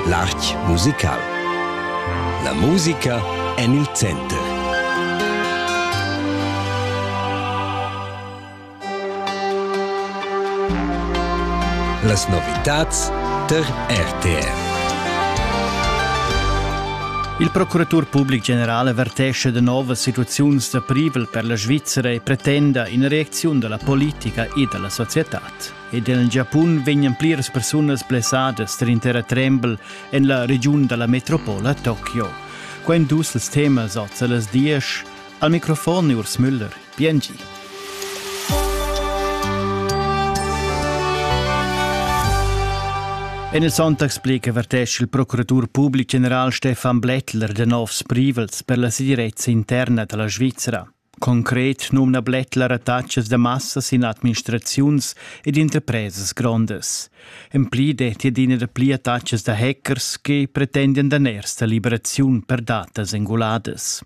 L'arch musical. La musica en il center. Las novitads per RTR. Il procuratur public general avertesce de novas situaziuns da privel per la Svizzera e pretenda in reacziun della politica e della società. Ed en il Giapun vegnan pliras persunas blessadas tar in terratrembel en la regiun da la metropola Tokio. Quai èn dus ils temas oz a las diesch. Al microfon è Urs Müller. Biengi. En il Sonntagsblick avertescha il procuratur public general Stefan Blättler de novs privels per la segirezza interna da la Svizzera. Concret numna Blättler attachas da massas in administraziuns ed interpresas grondas. En pli detti adina da pli attachas da hackers che pretendian daners da liberaziun per datas enguladas.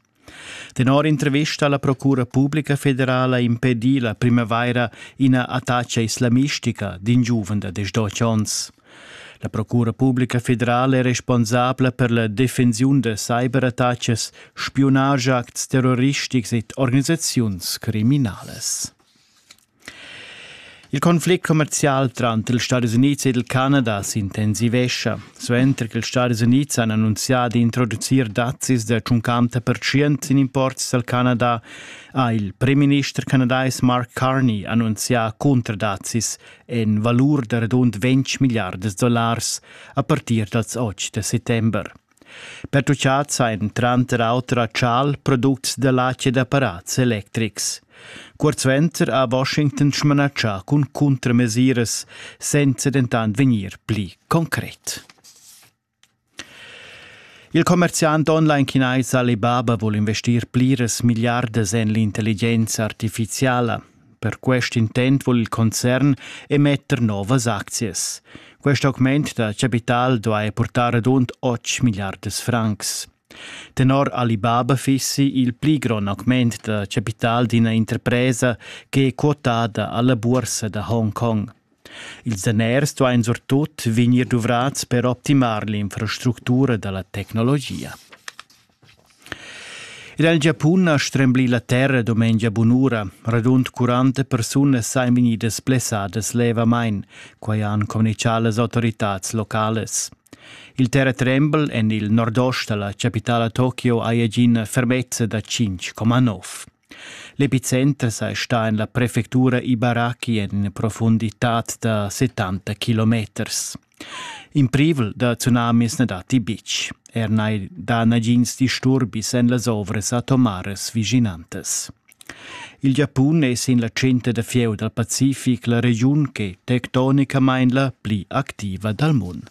Tenor intervista alla Procura Pubblica Federala impedì la primavaira ina attacca islamistica d'in giuven da 18 onns. La Procura publica federala è responsabla per la defensiun da cyberattacas, spiunage, acts terroristics ed organisaziuns criminalas. Il conflict commercial tranter ils Stati Uniti ed il Canada s'intensivescha. Suenter che ils Stati Uniti han annunzià di introducir dazzis da 50% in imports dal Canada, ha il premierminister canadais Mark Carney annunzià cuntradazzis en valur da radund 20 milliardas dollars a partir dals 8 da settember. Pertucciats ein tranter auter a Chal products da latg ed apparats electrics. Kurz venter ha Washington smanatschà cun cuntramesiras, senza dentant vegnir pli concret. Il commerziant online chinais Alibaba vul investir pliras milliardas en l'intelligenza artifiziala. Per quest intent vul il concern emetter novas aczias. Quest augment da capital duai portar adunt 8 milliardas francs. Tenor Alibaba fissi il pli grond augment da capital d'ina interpresa ch'è quotada alla bursa da Hongkong. Ils daners duain surtut vegnir duvrads per optimar l'infrastructura da la tecnologia. Er el Giapun ha stremblì la terra dumengia bunura. Radund 40 persunas sain vegnidas blessadas levamain, quai han communichà las autoritads localas. Il terratrembel en il nordost da la chapitala Tokio ha agina fermezza da 5,9. L'epicenter sei sta en la prefectura Ibaraki en profunditad da 70 kilometers. In privel da tsunamis ne dati bitg. Er nei da nagins disturbis en las ovras atomares viginantes. Il Giapun è sin la cinta da fieu dal Pacific la regiun che tectonicamain la pli activa dal mondo.